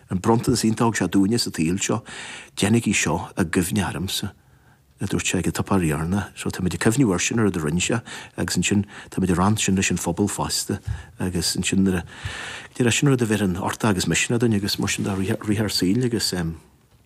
An bronntanas iontach a thug sé dúinne sa tsaol seo, déanaigí seo i gcuimhne ormsa, a dúirt sé ag an tSuipéar Dheireanach. So táimid ag cuimhniú air sin, an rud a rinne sé agus ansin táimid ag roinnt sin leis an phobal fosta agus ansin nuair a, nuair a, sin rud a bheireann uchtach agus misneach dúinn agus mar sin de i rith ár saoil agus.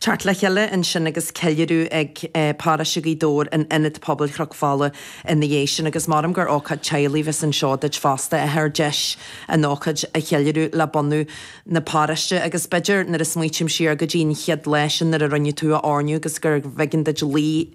Teacht le chéile ansin agus ceiliúradh ag Paráiste Ghaoth Dobhair in Ionad Pobail Chnoc Fola ina dhiaidh sin agus maram gur ócáid teaghlaigh a bheas anseo duit fosta, a Athair, deis an ócáid a cheiliúradh le bunadh na paráiste agus b'fhéidir nuair a smaoitím siar go dtí an chéad lá sin nuair a rinneadh tú a oirniú agus gurbh éigean duit luí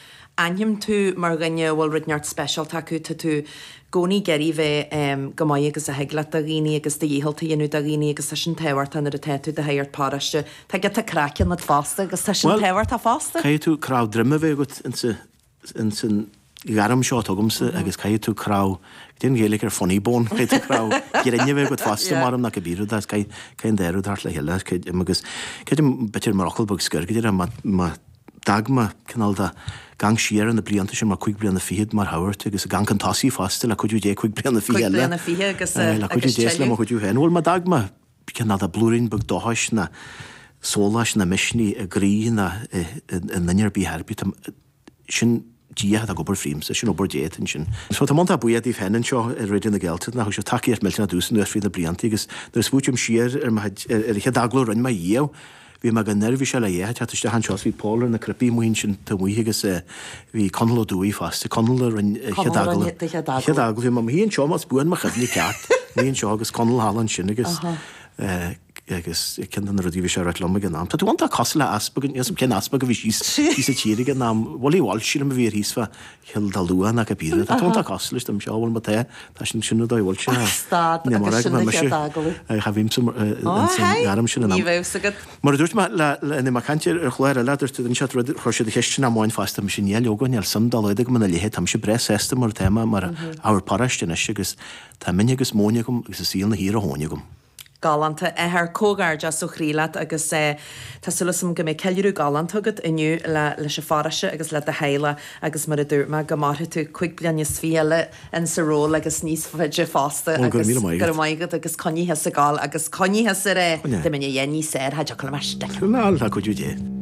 aithním tú mar dhuine a bhfuil rud inteacht speisialta agat, tá tú i gcónaí ag iarraidh bheith chomh maith agus a thig leat do dhaoine agus do dhícheall a dhéanamh do dhaoine agus tá sin tábhachtach nuair atá tú i do shagart paráiste, tá giota craic ionat fosta agus tá sin tábhachtach fosta. Caithfidh tú cnámh droma a bheith agat ins an ghairm seo tuigimse agus caithfidh tú cnámh, caidé an Ghaeilge ar funny bone, caithfidh tú cnámh grinn a bheith agat fosta maram ná cibé rud é, caithfidh an dá rud theacht le chéile, creidim, agus creidim b'fhéidir mar fhocal beag scoir go deimhin má dogma, cineál de ag amharc siar ar na blianta sin, mar cúig bliana fichead mar shagart, agus ag amharc chun tosaigh fosta, le cuidiú Dé, cúig bliana fichead eile. Cúig bliana fichead agus Aye, le cuidiú Dé is le mo chuidiú féin. Bhuel, má d'fhág mé, cineál de blúirín beag dóchais ná sóláis ná misnigh i gcroí ná i nduine ar bith, ar bith. Sin. Dia atá ag obair fríomsa, sin obair Dé atá ansin. So tá mé iontach buíoch díobh féin anseo i Raidió na Gaeltachta nach bhfuil sibh tacaíocht mhillteanach domhsa anuas fríd na blianta agus nuair a smaoitím siar ar mo chuid, ar an chéad agallamh a rinne mé dhíobh, bhí mé go neirbhíseach le theacht isteach anseo 's bhí Pól ar na cnaipí amuigh ansin taobh amuigh agus bhí Conall Ó Dubhthaigh fosta, Conall a rinne an chéad agallamh, an chéad agallamh, bhí mé i mo shuí anseo más buan mo chuimhne ceart, mo shuí anseo agus Conall thall ansin agus eh. Agus ceann de na rudaí a bhí sé a ráit liom ag an am, tá tú iontach cosúil le easpag, níl 'fhios a'm cén easpag a bhí síos síos sa tír ag an am, Willie Walsh sílim a bhí air thíos fá Chill Dalua ná cad b'fhíre, tá tú iontach cosúil leis dom seo, bhuel má tá, tá sin, sin an dóigh a bhfuil sé. Ach stad agus sin an chéad agallamh. Ach tá bhímse mar, Ó a haigh, ní raibh 'fhios agat. Mar a dúirt mé le, le, le, mar caint ar an chlár eile, dúirt, dhein siad rud, chuir siad ceisteanna amháin fosta, mise níl a fhios, níl suim dá laghad agam ina leithéid, táimse breá sásta mar atá mé, mar shagart paráiste anois agus tá min agus móin agam agus an saol ina shuí ar a thóin agam. Galánta. A Athair, comhghairdeas ó chroí leat agus tá súil agam go mbeidh ceiliúradh galánta agat inniu leis an pharóiste agus le do theaghlach agus mar a dúirt mé, go mairfidh tú cúig bliana is fiche eile in sa ról agus níos faide fosta agus gura maith agat agus coinnigh ag gabháil agus coinnigh ar do mhine dhéin níos saortha, diolch go raibh maith. Go raibh maith agat, le cuidiú Dé.